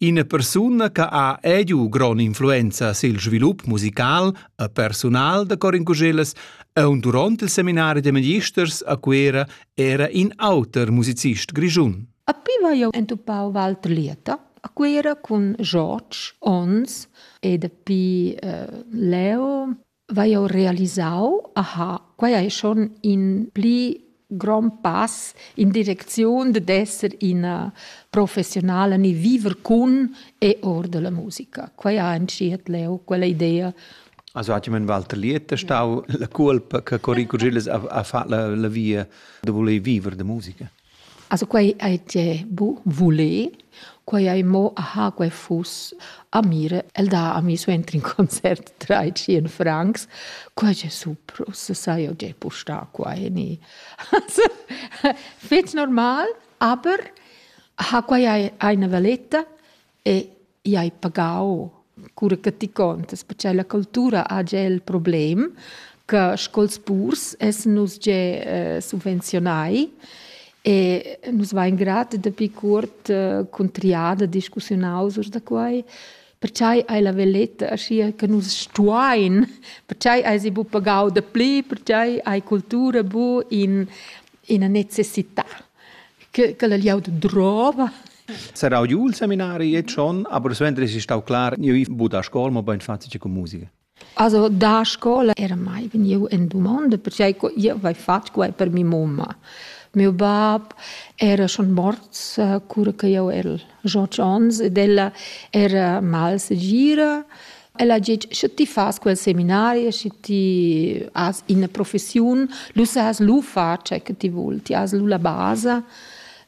Ina persuna che ha ediu grond'influenza sil svilup musical e persunal da Corin Cuschellas aunc duront il seminari da magisters a Cuera era in auter musicist grischun. A pi va jeu entupau Walter Lieta a Cuera cun George Ons e dapi eh, Leo vai jau realisau, aha, quai è schon in pli grond pass in direcziun de d'esser ina professionala ni viver cun e or della musica. Quai ha entschiet leu quella idea. Also hat jemand Walter Liet stau la culpa che Corico Gilles ha, ha fatto la, la via de voler vivere de musica. Also quai ei tie bu vuler, quai ei mo aha, quei fuss a mir. El dà a mi suenter in concert trais-tschien francs. Quai è super, ussa sai jau gea pustar qua e ni. Also, fetg normal, aber aha, quai ei eine valetta. e i hai pagau cura che ti contas, perché la cultura ha gia il problem che scols purs essan nus gia eh, subvenzionai e nus vain grat dapi cuort eh, cun triada discussiunaus urs da quai perchai hai la veletta aschia che nus stuain, perchai hai si bu pagau da pli, perchai hai cultura bu in ina necessità che, che la liaud drova Sarau giu il seminari e schon, aber suenter es stau clar, io vi bu da scola, ma bein fatg che con musica. Also da scola era mai vegniu en domanda perché io avevo fatto quai per mia mamma. Mio bab era schon morts eh, cura che io ero 18 anni ed ella era mal segira. Ella ha detto, se ti fas quel seminario, se ti has una professione, lu has lu far ciò che ti vuoi, ti has lu la base.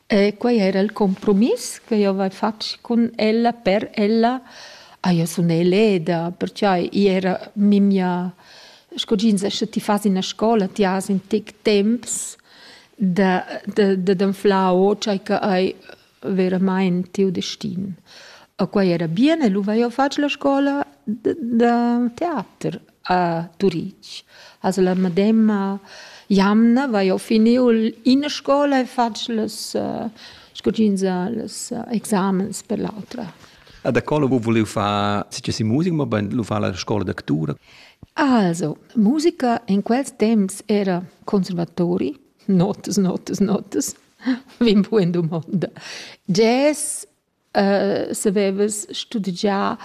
E quei era il compromiss che jeu hai fatg cun ella per ella. Ah, jeu sun eleda, pertgei i era memia, sco tg'ins dice, ti fas ina scola, ti has in tec temps da, da, d'anflar o tgei che ei veramain tiu destin. E quei era bien e lu vai jeu fatg la scola da teater. a Turitg. Also la medemma jamna vai ho finiu ina scola e fatg las uh, scogins uh, las uh, examens per l'autra. A da cola vu vuliu far si si musica, ma ben lu fa la scola d'actura. Also, musica in quels temps era conservatori, notas, notas, notas, vin pu in domanda. Jazz savevas studegià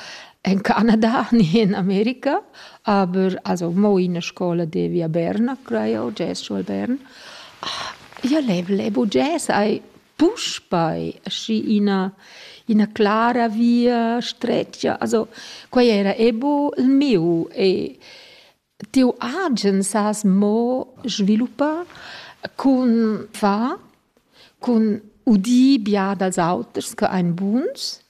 en Canada ni en America, aber also mo ina scola devi a Berna, crai jau, jazz scuol Bern. Io lev, levu jazz, ai puspei aschi ina, ina clara via stretga. Also quei era ebo il miu e Tiu agen sas mo sviluppar cun far, cun udir bia dals auters che ein buns.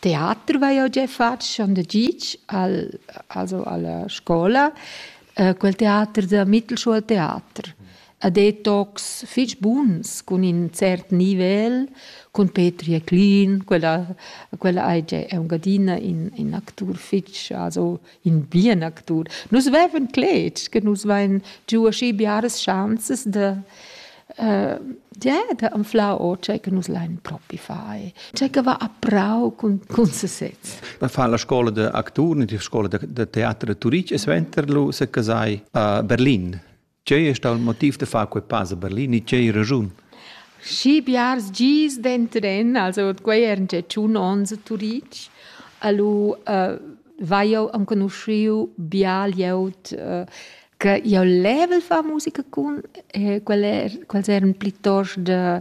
Teater vai jeu gia fatg schon da gitg al, also alla scola, quel teater da Mittelschuhltheater. Ha detox fetg buns cun in cert nivel, cun Petri e Clean, quella, quella ei gia aunc adina in, in actur fetg, also in bien actur. Nus veven cletg che nus vein giu aschi biaras chanzas de Uh, ja, da anflau o tgei che nus lein propi fai. Tgei che va a prau cun, cun sesez. Ma fa la scola de actur, la scola de, de teater de Turic, e suenter lu se casai a Berlin. Tgei è stato il motiv da far quei pass a Berlin e tgei ragiun? Schi biars gis denteren, also quei eran gia tschun onns a Turitg, allu uh, vai jau enconosciu bia glieud uh, che io level fa musica cun, e quel er, quels eran plitost de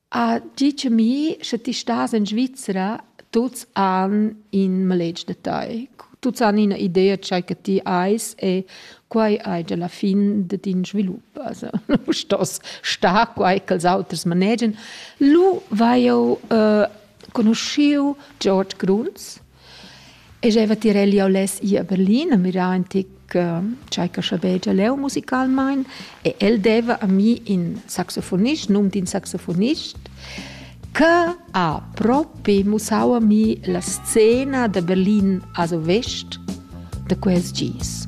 A tgi cha mi, sche ti stas in Svizra, tuots han in maletg da tai. Tuots han ina idea dschai che ti ais e quai haja la fin da tin svilup. Also nu stos star quai ch'els auters manegian. Lu vai jeu conuschiu George Gruns. E jeva tirel jau less ir a Berlin a mirar in tic tgei che schabegia leu musicalmein e el deva a mi in saxofonist, num d'in saxofonist, che ha propi mussau a mi la scena da Berlin a Vest da quels gis.